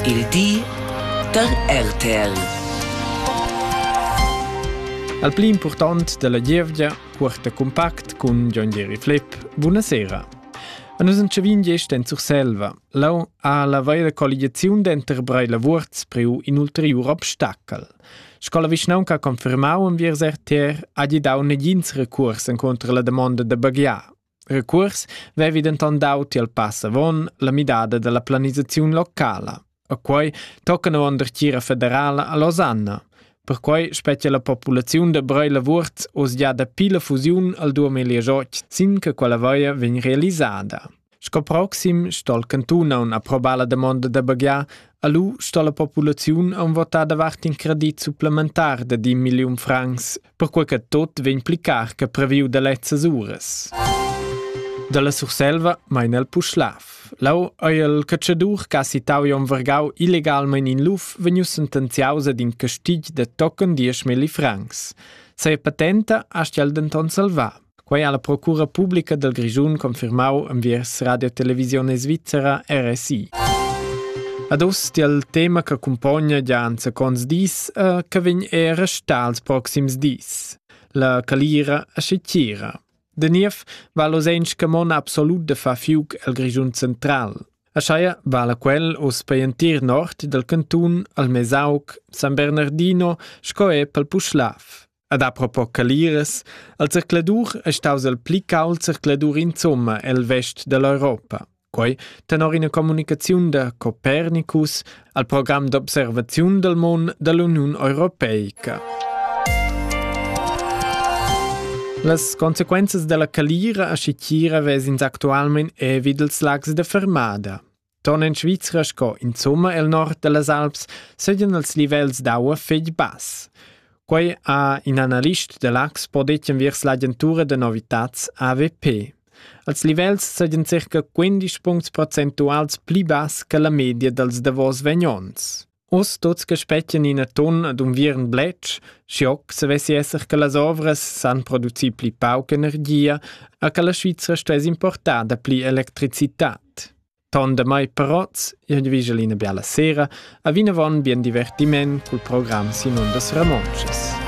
Il di da RTL. Al pli impurtant dalla gievgia porta compact cun John Jerry Flip. Buonasera. A nus entschavin gest en Surselva. Lau ha la veira colligiaziun denter Breila Wurz preu in ulteriur obstacel. Sco la vischnaunca confermau enviers RTR ha gli dau negins recurs encontro la damonda da baghiar. Recuors vevi denton dau tiel pass avon la midada dalla planisaziun locala. A quei toccana avon dertgira federala a Losanna. Perquei spetga la populaziun da Brei Lavurt oz gia dapi la fusiun al 2018 sin che quella vaia vegn realisada. Sco proxim stol cantun aun approbar la demonda da baghiar, alu sto la populaziun aun votar davart in credit supplementar da 10 milliun francs perquai che tot vegn pli car che previu da lezzas uras. Dalla Surselva mein el Puschlav. Lau ei il catschadur che ha citau Jon Vergau illegalmein in luf vegnius sentenziaus ad in castigl de tochen dieschmilli francs. Sa patenta astgel denton salvar. Quei ha la procura publica dal Grischun confirmau enviers Radio Televisione Svizzera RSI. Ad oz tiel tema che cumpogna gia anzaconts dis e che vegn era star ils proxims dis. La calira a Schitira. De niev va losench che mon absolut de fa fiuc el Grischun central. A Scheia vala quel os paientir nord dal cantun al Mesauc, San Bernardino, sco e pel Puschlav. Ad apropos Caliras, al zercladur è staus il pli cauld zercladur insomma el vest dell'Europa. Quei tenor ina communicaziun da Copernicus al program d'observaziun del mon dell'Uniun Europeica. Las consequenzas della calira a Scicchira vesins actualmein evid ils lags de Fermada. Ton en Svizra sco insumma el nord dallas Alps seigien els livels d'aua fetg bass. Quei ha in analist da l'Axpo detg viers l'agentura da novitats AVP. Als livels seigien circa 15 puncts procentuals pli bass che la media dals davos vegn onns. Us tuts che spettan ina ton ad unviern bletsch, schoc se vessi esser che las ovras san producir pli pauc energia e che la Svizra stuess importar da pli electricitat. Ton da mai parots, io vigel ina biala sera, a vinavon bien divertiment col program Simon das Ramonches.